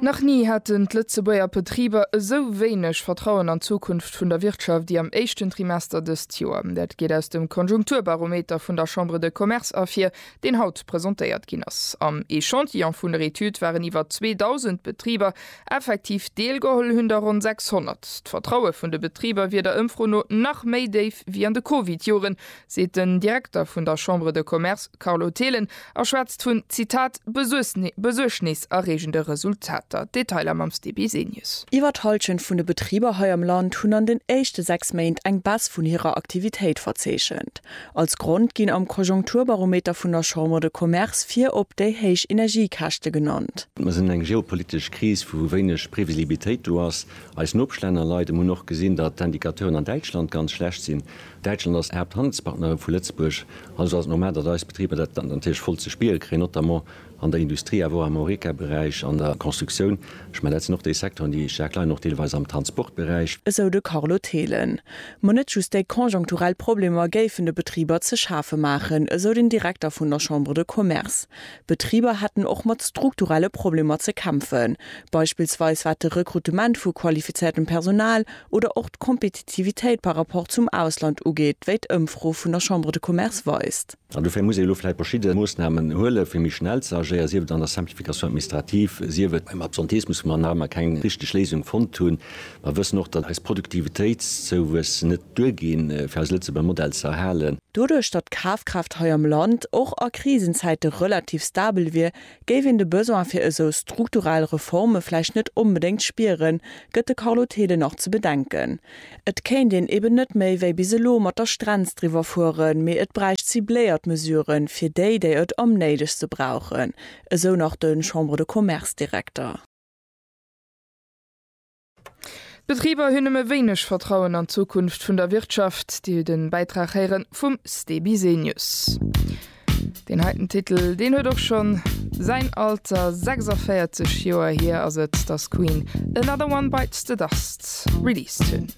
Nach ni haten d'Lëtzebuerger Betriber esou wéineg Vertrauen an d'Zukunft vun der Wirtschaft ewéi am éischten Trimester dëst Joer. Dat geet aus dem Konjunkturbarometer vun der Chambre de Commerce ervir, deen haut presentéiert ginn ass. Am Echantillon vun der Etüd waren iwwer 2.000 Betriber. Effektiv deelgeholl hunn der ronn 600. D'Vertraue vun de Betriber wier der Ëmfro no nach méi déif ewéi an de Covid-Joren, seet den Direkter vun der Chambre de Commerce Carlo Thelen a schwätzt vun, Zitat, besuergneserreegende Resultater. Detailer mam Steve Bisenius. Iwwer d'Hallschent vun de Betriber hei am Land hunn an den éischte 6 Méint eng Baisse vun hirer Aktivitéit verzeechent. Als Grond ginn am Konjunkturbarometer vun der Chambre de Commerce virop déi héich Energiekäschte genannt. Mer sinn an eng geopolitesch Kris, wou wéineg Previsibilitéit do ass. Eis Nopeschlänner leiden. Mer hunn och gesinn, datt d'Indicateuren an Däitschland ganz schlecht sinn. Däitschland ass Haapthandelspartner vu Lëtzebuerg, also ass et normal, datt eis Betriber dat natierlech voll ze spiere kréien, notamment an der Industrie, awer och am Horeca-Beräich, an der Constructioun. Ech mengen, dat sinn och déi Secteuren, déi staark leiden, och deelweis am Transportberäich. Esou de Carlo Thelen. Ma net just déi konjunkturell Problemer géifen de Betriber ze schafe maachen, esou den Direkter vun der Chambre de Commerce. D'Betriber hätten och mat strukturelle Problemer ze kämpfen, beispillsweis wat de Rekrutement vu qualifizéiertem Personal, oder och d'Kompetitivitéit par rapport zum Ausland ugeet, wéi d'Ëmfro vun der Chambre de Commerce weist. An dofir muss ee elo vläicht verschidde Moossnamen huelen, fir méi schnell ze agéieren, sief et an der Simplification administrative, sief et beim Absenteismus, wou mer nach ëmmer keng richteg Léisung fonnt hunn. Mer wëssen och, datt eis Produktivitéitszouwuess net duerginn, fir eise Lëtzebuerger Modell ze erhalen. Doduerch, datt d'Kafkraaft hei am Land och a Krisenzäite relativ stabel wier, Géif een de Besoin fir esou strukturell Reforme vläicht net onbedéngt spieren, gëtt de Carlo Thelen nach ze bedenken. Et kéint een eben net méi wéi bis elo mat der Strenz driwwer fueren, mee et bräicht cibléiert Mesuren, fir déi, déi et am néidegste brauchen, esou nach de Chambre-de-Commerce-Direkter. D'Betriber hunn nëmme wéineg Vertrauen an d'Zukunft vun der Wirtschaft. Dir hutt e Bäitrag héieren vum Ste Bisenius. Deen heiten Titel, deen huet och schonn säin Alter, 46 Joer hier ass et, dass Queen Another One Bites the Dust released hunn.